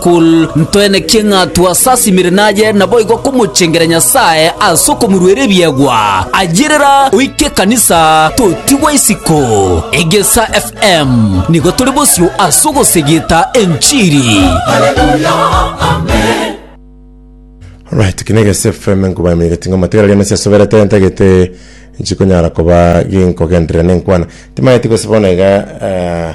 Kul. Ntwenekie ng'a twasasimire naye, naboigo komochengera Nyasae ase okomoruera ebiegwa. Ayerera oike ekanisa, totigwa isiko. Egesa FM nigo tore bosio ase ogosegeta enchiri. Alright, kina egese FM nkobaimanyegete ng'a matigara riane siasoberete ntagete nchikonyara koba ginkogenderera nenkwana timanyeti gose bono iga eh,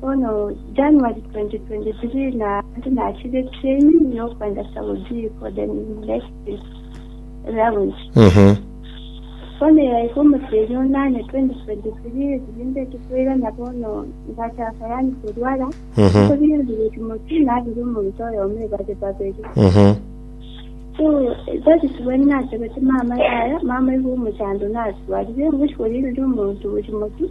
Bono January 2023 na ante nachire training yokwenda Saudi for the next round. Mhm. Bono yaika omoteria onane 2023 rinde tokoirana bono ngachaka yani korwara. Mhm. Kobiri ndire Timothy nabiri omonto oyomo ebare babere. Mhm. So that is when nachebete mama yaya mama igo omochando natwarire ngochi korire omonto Timothy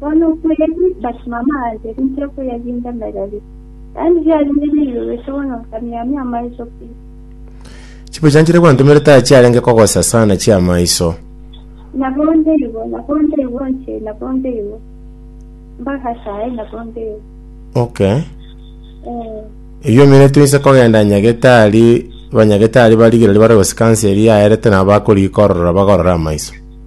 Bono okweri, but mama aye inche okoyaginda mereri. Yaani riarenge riibe goika bono nkamiamia amaiso pi. Chipicha nchiria gwantomire taya chiarenge kogosa sana chi'amaiso. Nabo ndeibo, nabo ndeibo inche, nabo ndeibo. Mpaka saii nabo ndeibo. Okay. Eh, Eyio eminto inse kogenda nyagetari, banyagetari bari rigira ribare gosika nse eria yaerete nabo bakoriikorora bagorore amaiso.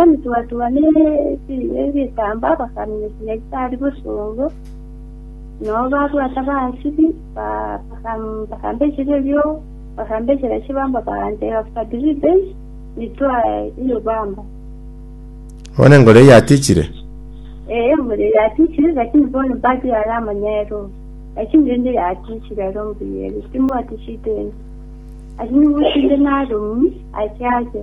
Emetwatwa ne ebiina ebi'ekeamba bakaminyokia Nyasae bosongo, na ababwate abaasibi bakambechera erio, bakambechera chibamba baganchera Fadiribe, nitwa Yobamba. Bono enkoro eye yatichire. Eh, enkoro eye yatichire, lakini bono mbati are amanyero, lakini rende yatichire aro mbuya ere, timwati shida ende. Lakini gochia inde naromi, achiake.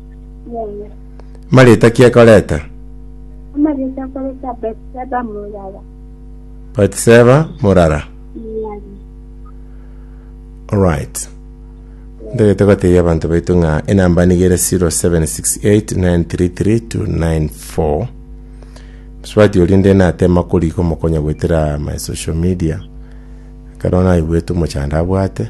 Yeye. Marieta ki akoreta? Amarieta akoreta Betseba murara. Batiseba murara. Murari. Alright. Ntagete gotebia abanto baito ng'a enamba niga ere 0768933294. Msubati oria nde natema koriga omokonya goetera my social media. Ekero naigwete omochando abwate.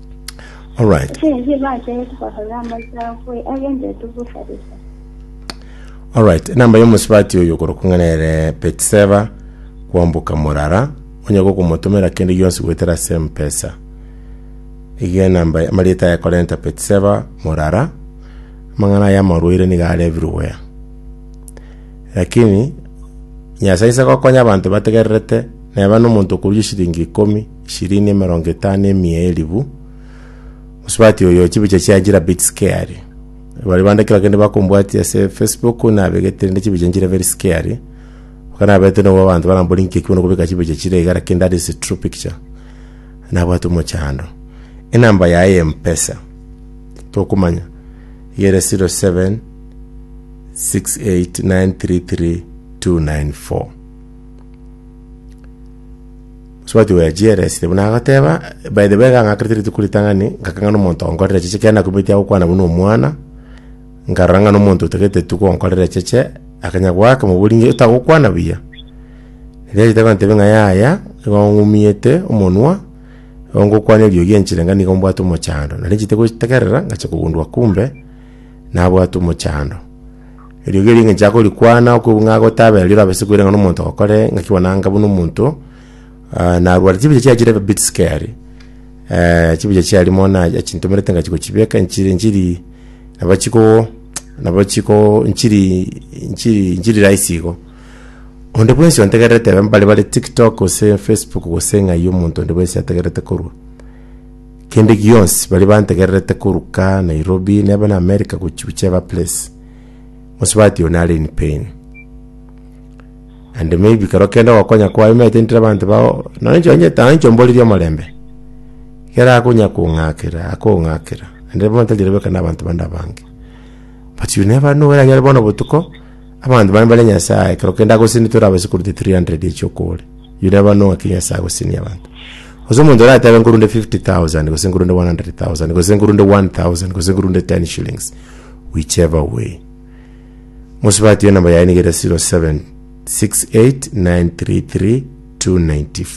Alright. Chenzi bateete korora amachao kwe agendetu busalisa. Alright, enamba y'omosibati oyo okorokwa ng'a nere Betseba kwamboka morara, onye gokomotomera kende gionsi goetera ase empesa. Iga enamba amarieta aya korenta Betseba morara, amang'ana aya amarwaire niga are everywhere. Lakini Nyasae inse gokonya abanto bategererete, neba nomonto okorusia shilingi ikomi Shirini emerongo etano emia elifu. Mosubati oyo chibicha chia njira bit scary. Bari bande kera kende bakombwati ase Facebook nabegete rende chibicha njira very scary. Bakanabete nobo abantu barambori nki ekibona kobeka chibicha chire iga lakini that is a true picture. Nabwate omochando. Enamba yaye ya Mpesa. Tokumanya. Yere 07 68933 294. Sibati oyo achieresire buna agoteba, By the way, iga ng'akerete rituko ritang'ani, ngakeng'ana omonto onkorera echeche ekero nakumeti agokwana buna omwana, nkarora ng'a nomonto otagete tu gonkorera echeche, akanya goaka mobori ng'a otagokwana buya. Erio achete gontebia ng'a yaya, igo ng'umiete omonwa, igo ngokwana eriogi enchire ng'a nigo mbwate omochando. Nari nchiete gotegerera, ngachia kogundua kumbe. nabwate omochando. Erio egerio engencho akorikwana okobua ng'a gotabe aria orabe ase koirana nomonto ogokore ng'aki bwananga buna omonto ah, narware chibicha chiaye chire bit scary eh, chibicha chiaye rimo na achintomerete ng'achi gochibeka nchiri nchiri nabo chiko nabo chiko nchiri nchiri nchiri rahisi igo onde bwensi ontegererete ebe mbare bare tiktok gose facebook gose ng'ai omonto onde bwensi ategererete korwa Kende gionsi baria bantegererete koruka Nairobi neba na America gochia gochia eba place. Mosubati oyo nare in pain. And maybe kero kende ogokonya kwaye omanyete ntire abanto bao nonye inche onye tano inche omborerie omorembe. Kera akonya kong'akera akong'akera. Ande bono tari rirobe ekero na abanto bande abange. But you never know where are you bono botuko. Abanto bane bare Nyasae, ekero kende agosini tore abasekurute 300 ye chiokooria. Yuda eba nong'aki ya Nyasae agosinia abanto. Gose omonto ore atebe nkorunde 50,000, gose nkorunde 100,000, gose nkorunde 1,000, gose nkorunde 10 shillings, whichever way. Mosubati enamba yaye niga ere 0768933294.